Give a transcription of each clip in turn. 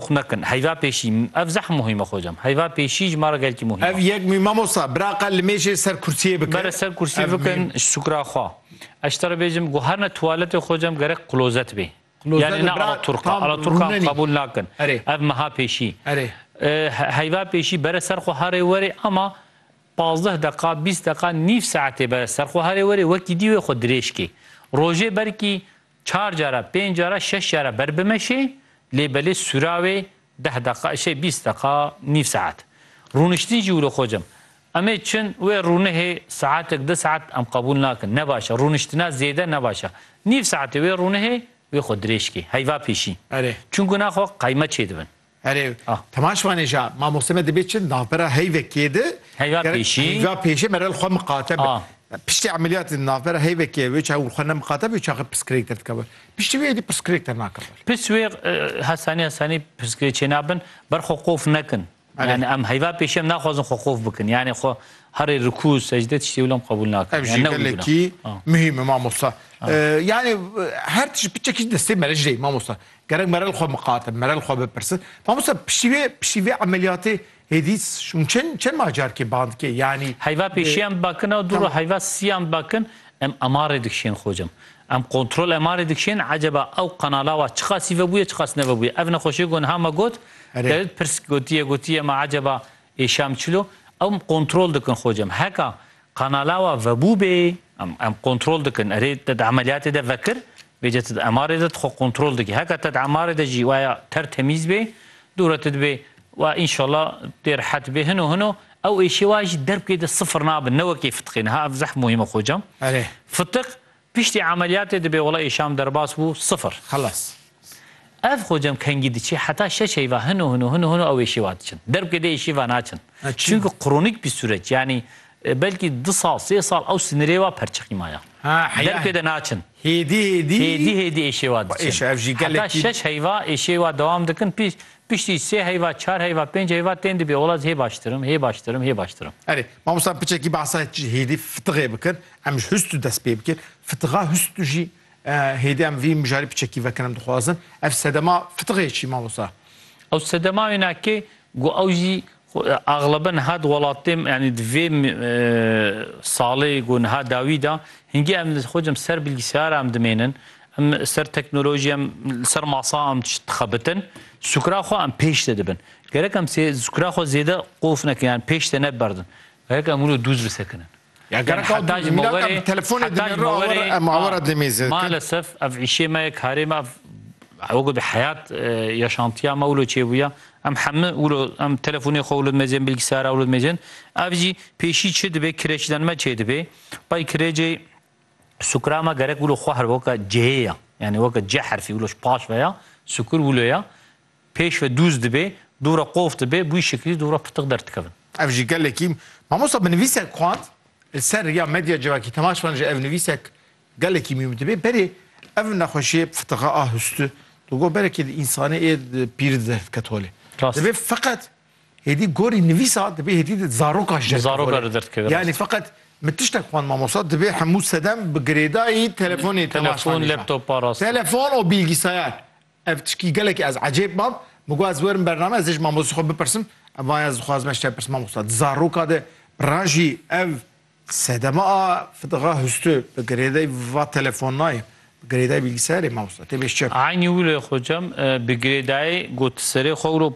Xwe mekin. Heyva pêşî. Ev zehm muhîm e xocam. Heyva pêşî ji ma re gelkî muhîm e. Ev yek mî mamosta. Biraqa li mêşê ser kursiyê bike. Bere ser kursiyê bikin ji sukra xwe. Ez ji te re bêjim ku her ne tuwaletê xocam gerek klozet bê. Yanî ne alaturka. Alaturkan qebûl nakin. Ev meha pêşî. Heyva pêşî bere ser xwe herê werê ama pazdeh deqa, bîst deqa, nîv saetê bere ser xwe herê werê wekî dî wê xwe dirêj kê. Rojê belkî Çar cara, pênc cara, şeş cara ber bimeşê, lê belê sûra wê deh deqa, şey bîst deqa, nîv saet. Rûniştin jî wilo xocam. Em ê çin wê rûnihê saetek, du saet em qebûl nakin. Ne baş e. Rûniştina zêde ne baş e. Nîv saetê wê rûnihê wê xwe dirêj kê. Heyva pêşî. Erê. Çunku naxwe qeyme çêdibin. Erê, tema şima nêja, mamoste me dibê çi navbera heyvekê de Heyva pêşî. Heyva pêşî me rel xwe miqate be. Piştî emeliyatê de navbera heyvekê wê çaxê xwe nemiqate be wê çaxê pirsgirêk derdikeve. Piştî wê êdî pirsgirêk dernakive. Pirs wê hesanî hesanî pirsgirê çênabin ber xwe qof nekin. Yani em heyva pêşî em naxwazin xwe qof bikin. Yani xwe herê rikû secde tiştê wilo em qebûl nakin. Ev jî gelekî muhîm e mamosta. Yani her tişt biçe kî destê me re jî mamosta. Gerek merel xwe miqate, merel xwe bipirse. Mamosta piştî vê piştî vê emeliyatê hêdî şûn çend çend ma carkê bandikê yanî. Heyva pêşiyan bakin a dûr heyva siyan bakin em emarê dikişên xocim. Em kontrol emarê dikişên eceba ew qenala wa çiqasî vebûye çiqas nevebûye. Ev nexweşê ku niha me got dewlet pirs gotiye gotiye ma eceba êşam çilo ew kontrol dikin xocim. Heka Kanala wa vebû bê, em em kontrol dikin. Erê te di emeliyatê de vekir, bêce te di MRê de tu xwe kontrol dikî. Heke te di MRê de jî waya ter temîz bê, dûre tu dibê wa înşallah tê rehet bê. Hino hino ew êşê wa jî derbkê de sifir nabin, ne wekê fitiqê. Niha ev zeh muhîm e xocam. Erê. Fitiq Piştî emeliyatê dibe wala îşam derbas bû sifir. Xelas. Ev xocem kengî diçe heta şeş heyva hino hino hino hino ew êşiva diçin. Derbke dê êşiva naçin. Çunki kronîk bî sureç yanî belkî du sal sê sal ew sinirê wa perçiqî maya. Derbke de naçin. Hêdî hêdî hêdî hêdî êşiva diçin. Heta şeş heyva êşiva dewam dikin pî piştî sê heyva çar heyva pênc heyva tên dibe wala ez hê baştir im hê baştir im hê baştir im. Erê mamosta piçekî behsa hêdî fitiqê bikir. Em ji hûstu dest pê bikin. Fitixa hûstu jî hêdî em vî mijarê piçekî vekin em dixwazin. Ev sedema fitixe çî mamosta? Ew sedema wêne ki ku ew jî axlebe niha di welatê yanî di vê salê ku niha dawî de hingî em li xwe cem ser bilgisayara em dimênin. Em li ser teknolojî em li ser masa em tişt dixebitin. Sukra xwe em pêş de dibin. Gerek em sukra xwe zêde qof nekin yan pêş de neberdin. Gerek em wilo dûz bisekinin. Gerek ew dî mînak em telefonê dimê re awer e mawera demê zê. Malesef ev îşê me ye karê me ev wego bi heyat yaşantiya me wilo çêbûya em hemû wilo em telefonê xwe wilo dimê zê bilgisayara wilo dimê zê ev jî pêşî çi dibê kireçden me çê dibê bay kirêcê sukura me gerek wilo xwe her weke cihê ye yanî weke cih herfî wilo paş veya sukur wilo ye Pêş ve dûz dibê, dûra qof dibê, bûyî şikrî dûra pirtiq derdikevin. Ev jî gelekî Mamosta bi nivîsek xwend li ser riya medya civakî tema şivan ji ev nivîsek gelekî mîm dibê berê ev nexweşiyê pirtiqa a hûstu di gor berekê di însanê ê di pîrî di derdikete holê. Rast. Dibê feqet hêdî gorî nivîsa dibê hêdî di zaroka ji Di derdikete zaroka holê. re derdikeve Yanî rast. feqet min tiştek xwend mamosta dibê hemû sedem bi girêdayî telefonê tema şivan Telefon, nîşan. laptopa rast. Telefon û bîlgîsayar. Ev tişkî gelekî ez ecêb mam, min got ez werim bername ez ê ji mamoste xwe bipirsim, em vayê ez dixwazim ez ji te bipirsim mamosta di zaroka de rajî ev sedema a fidixwe hûsti bi girêdayî va telefonnayê bi girêdayî bîlgisayarê mamosta tê bê ji çepê. Eynî wilo xocam bi girêdayî got serê xwe wilo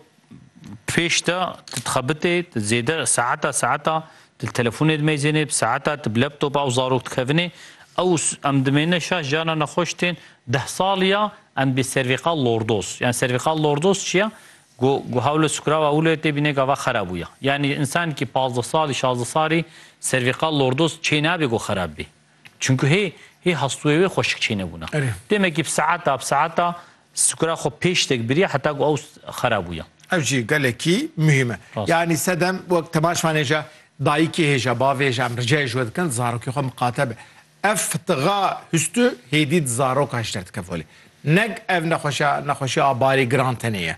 Pêş de tu dixebitê, tu zêde saeta saeta tu telefonê dimeyzênê, bi saeta tu bi laptopa ew zarok dikevinê. Ew em dimêne şaş cana nexweş tên. Deh sal ya em dibê servîqa lordoz. Yan servîqa lordoz çi ya? Ku ku hewle sukra wa wile tê bîne gava xera bûye. Yanî însankî pazdeh salî, şazdeh salî servîqa lordoz çênabê ku xerab bê. Çunku hê hê hastûyê wê xweşik çênebûna. Demekî bi saeta bi saeta sukra xwe pêş têk biriya heta ku ew xera bûya. Ev jî gelekî muhîm e. Yanî sedem wek temaşvanê je dayikê hê je bavê hê je em ricayê ji we dikin zarokê xwe miqate be. Ev fitiga hûstû hêdî di zarokan jî derdikeve holê. Neg ev nexweşa nexweşiya a barê giran tenê ye.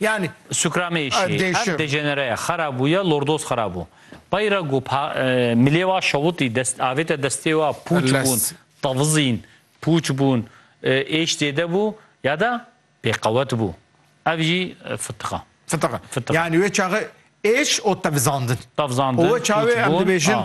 Yanî. Sukrameyîşî hev dejenere ye, xera bûye, lordoz xera bû. Peyre ku milê wa şewitî, dest avête destê wa, pûç bûn, tevizîn, pûç bûn, êş zêde bû ya de bêqewet bû. Ev jî fitiqa. Fitiqa. Yanî wê çaxê êş û tevizandin. Tevizandin, pûç bûn.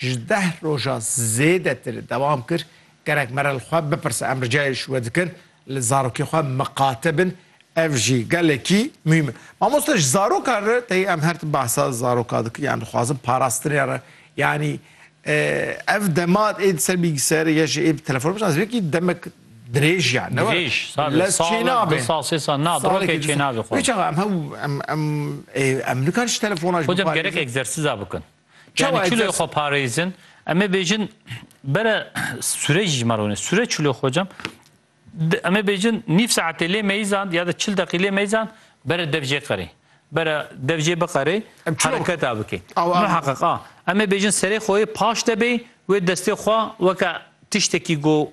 ji deh roja zêdetir dewam kir, Gerek mere li xwe bipirse em ricayê ji we dikin li zarokê xwe miqate bin, ev jî gelekî muhîm e. Mamoste ji zarokan re tê em her tim behsa zarokan dikin yan dixwazin parastinê re yanî ev dema ê di ser bîlgiser ya jî ê bi telefon bişna ez vê yekî demek dirêj ya ne dirêj lez çê nabê du sal sê sal na dirokê çê nabê xwe. Vê çaxa em hew em em em nikan ji telefona jî gerek egzersiza bikin. Yani çulê xo parêzin. Em ê bêjin bere sure jî ma rûne. Sure çulê xo cem. Em ê bêjin nîv saetê lê meyizan ya da çil deqî lê meyizan bere dev jê qerê. Bere dev jê biqerê hereketa bikê. Muheqeq a. Em ê bêjin serê xo yê paş de bê wê destê xo weke tiştekî go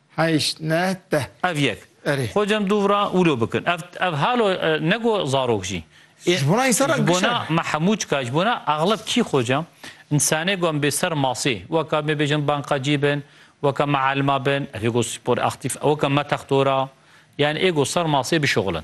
Heşt, neh, deh. Ev yek. Erê. Xwe cem dû vira wilo bikin. Ev ev halo ne go zarok jî. Ê Ji bona însan re ji bona gişer. me hemû çika ji bona exleb kî xwe cem însanê go em bê ser masê weka me bêjin bankacî bin, weka me elma bin, ev ê go spor aktîf, weka me textora yan ê go ser masê bişuxulin.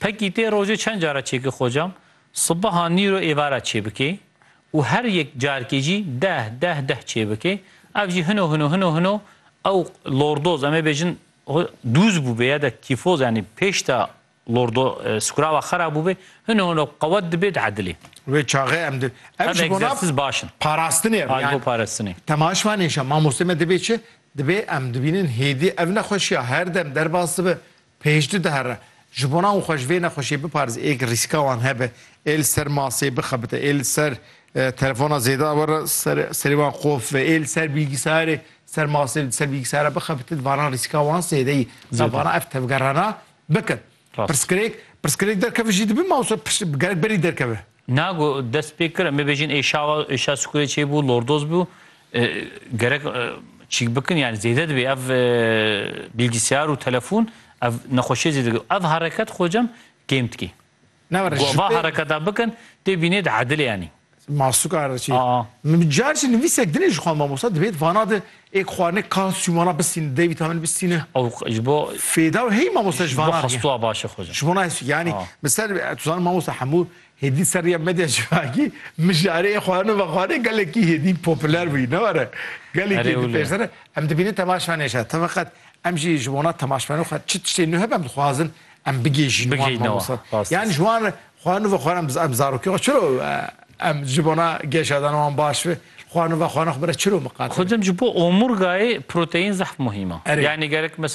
Pekîtê rojê çend cara çêke xocam, sibeha, nîro, êvara çêbike û her yek carkê jî deh, deh, deh çêbike. Ev jî hino hino, hino hino ew lordoz em ê bêjin dûz bûbe ya da kîfoz yanî pêş da lordo skurava xera bûbe hino hino qewet dibe di edilê. Wê çaxê em di ev ji bona parastinê ev yan temaş vanê şa mamostê me dibê çi dibê em dibînin hêdî ev nexweşiya her dem derbas dibe Pêşdu dihere. Ji bona û xwe ji vê nexweşiyê biparêz ê rîska wan hebe, ê li ser masê bixebite, ê li ser telefona zêde were serê wan qof ve, ê li ser bîlgîsayarê ser masê li ser bîlgîsayara bixebite di vana rîska wan zêde yî. Za vana ev tevgerana bikin. Pirsgirêk, pirsgirêk derkeve jî dibe mawso gelek berî derkeve. Na ku dest pê kir em ê bêjin ê şawa êşa sikurê çêbû lordoz bû gerek çîk bikin yani zêde dibê ev bilgisayar û telefon ev nexweşiyê zêde dibê. Ev hereket xocem kêm dikê. Na ver ji va hereketa bikin tê bînê di edilê yanî. Masuka re çî. Min carçî nivîsek dinê ji xwe mamosta dibêt vana di Ê xwa ne kan sûmana bistîne dey vîtamîn bistîne. Ew ji bo Fêda û hey mamoste ji vana rîya. Xesto baş e xwe ji. Ji bo nayê yanî min ser tu zanî mamoste hemû hêdî ser rîya medya civakî mijarê ê xwa ne vexwa ne gelekî hêdî popûler bûyî ne were. Gelekî di pêş de ne. Em dibînin temaşa nêşa. Teveqet em jî ji bona temaşbeno xwe çi tiştê nuh hebe em dixwazin em bigêjîn wan mamoste. Yanî ji wan re Xwe nûve xwe em em zarokê xwe çiro em ji bona geşadana wan baş be. Xwe nûve xwe ne xwe bire çiro miqate. Xudim ji bo omurgayê proteîn zehf muhîm e. Yani gerek mes